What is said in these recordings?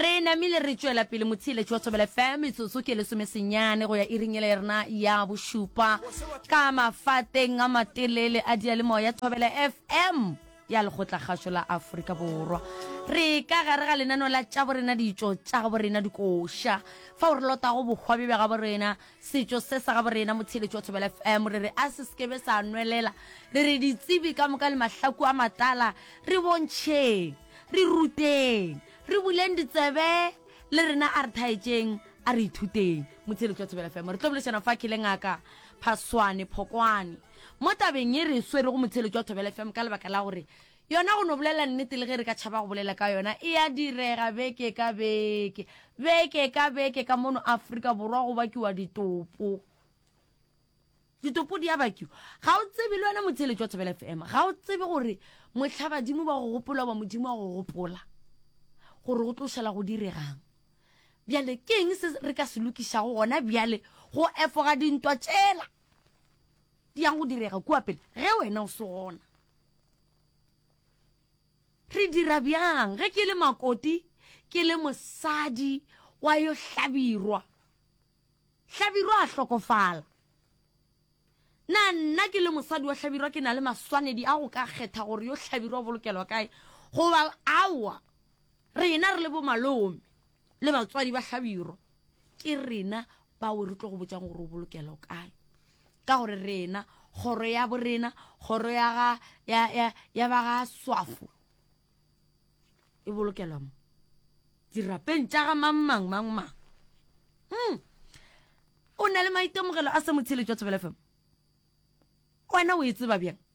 re namile re tšwela pele motheeletši wa thobela fm metsotso ke lesomesenyane go ya iring ele rena ya bošupa ka mafateng a matelele a diyalemoya thobela fm ya lekgotlakgašo la aforika borwa re ka gare ga lenano la tša borena ditšo tša gabo rena dikoša fa o re lotago bohwa bja gabo rena Setšo se sa gabo rena Motheeletši wa Thobela FM re re a se se kebe sa nwelela, re re ditsebi ka moka le mahlaku a matala, re bontšheng, re ruteng, re buleng ditsebe, le rena a re thaetšeng, a re ithuteng. Motheeletši wa Thobela FM re tlo bolešana fa ke le Ngaka Phaswane Phokwane mo tabeng ye re e swerego Motheeletši wa Thobela FM ka lebaka la gore Yona go no bolela nnete le ge re ka tšhaba go bolela ka yona, e a direga beke ka beke, beke ka beke ka mono Afrika Borwa go bakiwa ditopo. Ditopo di a bakiwa. Ga o tsebe le wena motheeletši wa Thobela FM, ga o tsebe gore mohla badimo ba go gopola ba modimo wa go gopola gore o tlo šala go diregang. Bjale ke eng se re ka se lokišago gona bjale go efoga dintwa tšela di yang go direga kua pele ge wena o se gona? Re dira bjang ge ke le makoti ke le mosadi wa yo hlabirwa? Hlabirwa a hlokofala. Na nna ke le mosadi wa hlabirwa ke na le maswanedi a go ka kgetha gore yo hlabirwa o bolokelwa kae? Goba aowa, rena re le bomalome. le batswadi ba hlabirwa ke rena bao re tlo go botsang gore o bolokela o kae ka gore rena kgoro ya borena kgoro ya ga ya ya ya ba ga swafo e bolokelwa mo dirapeng tša ga mang mang mang mang mm. o na le maitemogelo a se motsheletšwa tsebele fm wena o e tseba bjang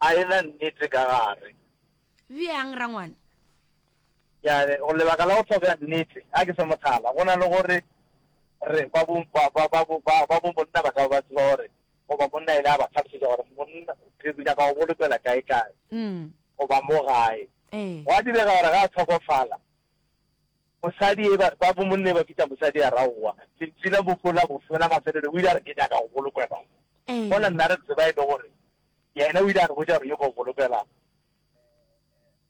A e na nnete ka gare. Bjang, rangwane? Ya re, Gore lebaka la go tlhokega nnete, a ke fe mohlala, go na le gore re, ba bo, ba, ba, ba bo, ba, ba bo monna ba ka ba ba tseba gore, goba monna a ile a ba hlalosetša gore monna, re, re nyaka go bolokela kae-kae, goba mo gae. Gwa direga gore ga a hlokofala, mosadi e, ba, ba bo monna e ba bitša mosadi a ra owa, lentšu la mofu la bofsa la mafelelo, o ile a re, Ke nyaka go bolokelwa mo. Mola nna re tseba e le gore Yena o ile a re botša gore yo go golopela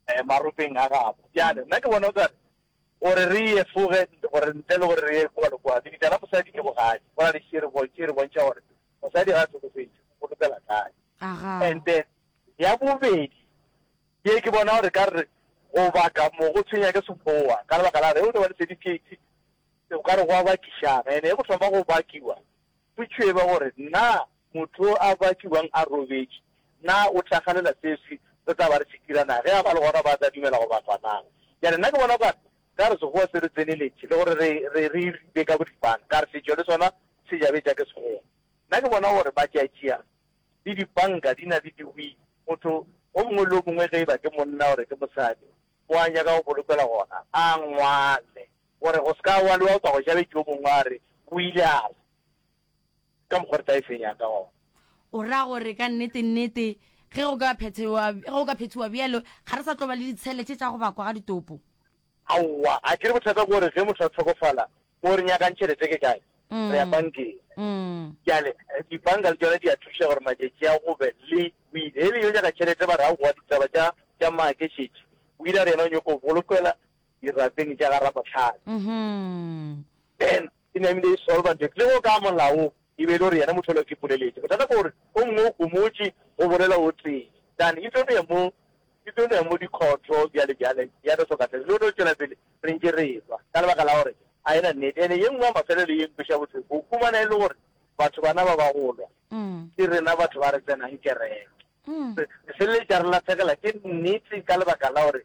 eh, maropeng a gabo. Bjale, nna ke bona o kare, gore re ye foge, gore ntle le gore re ye kwa le kwa, lebitla la mosadi ke bogadi, go na le šere bontši, re bontšha gore mosadi ga a tlhokofetše, o golopela kae. Aga. And then, ya bobedi, ye ke bona gore ka re, go baka mo go tshwenya ke sekgowa, ka lebaka la re, o tlo ba le certificate, o ka re go a bakišana, ene e go thoma go bakiwa, Go tšweba gore na motho yo a ba tšubang a robetše, na o tla ganela seswi re tla ba re se dira na? Ge a ba le gona ba tla dumela goba fa na? Bjale nna ke bona okare ka re Sekgowa se re tseneletše le gore re, re, re iripe ka boripana, ka re setšo le sona se jabetša ke Sekgowa. Nna ke bona gore matšatšia le dipanka di na le diwili. Motho o mongwe le o mongwe ge e ba ke monna gore ke mosadi o a nyaka go bolokelwa gona a ngwale. Gore go se ka gwa lewa go tla go ja bjedi yo mongwe, a re, O ile a re, Ke ka mokgwa re tla e fenya ka gona. O ra gore ka nnete-nnete ge go ka phethewa, ge go ka phethiwa bjalo, ga re sa tlo ba le ditshele tše tša go bakwa ga ditopo. Aowa, a ke re bothata ke gore ge motho a hlokofala, moo re nyakang tšhelete ke kae? Re ya bankeng. Bjale, dibanka le tšona di a thuša gore matšatši a go be le wili. Ge e le yo nyaka tšhelete, ba re, Aowa, ditaba tša, tša maakešetši. Wili a re yena o nyoko bolokelwa dirapeng tša ga ramohlale mm-hmm. then e ne ebile e solva ntho le go ka molaong e be e le gore yena motho o le ke poleletse bothata ke gore o mongwe o komotse go bolela o tee than e tlo ne mo e tlo ne mo dikhotho bjale bjale ya no soka tlhele le no tswela pele re ntse re tswa ka lebaka la gore a ena nnete ene ye nngwe ya mafelo le ye nkweša botlhoko go fumana e le gore batho bana ba ba golwa mm. ke rena batho ba re tsenang kereke mm. re feleletša re latlhegela ke nnete ka lebaka la gore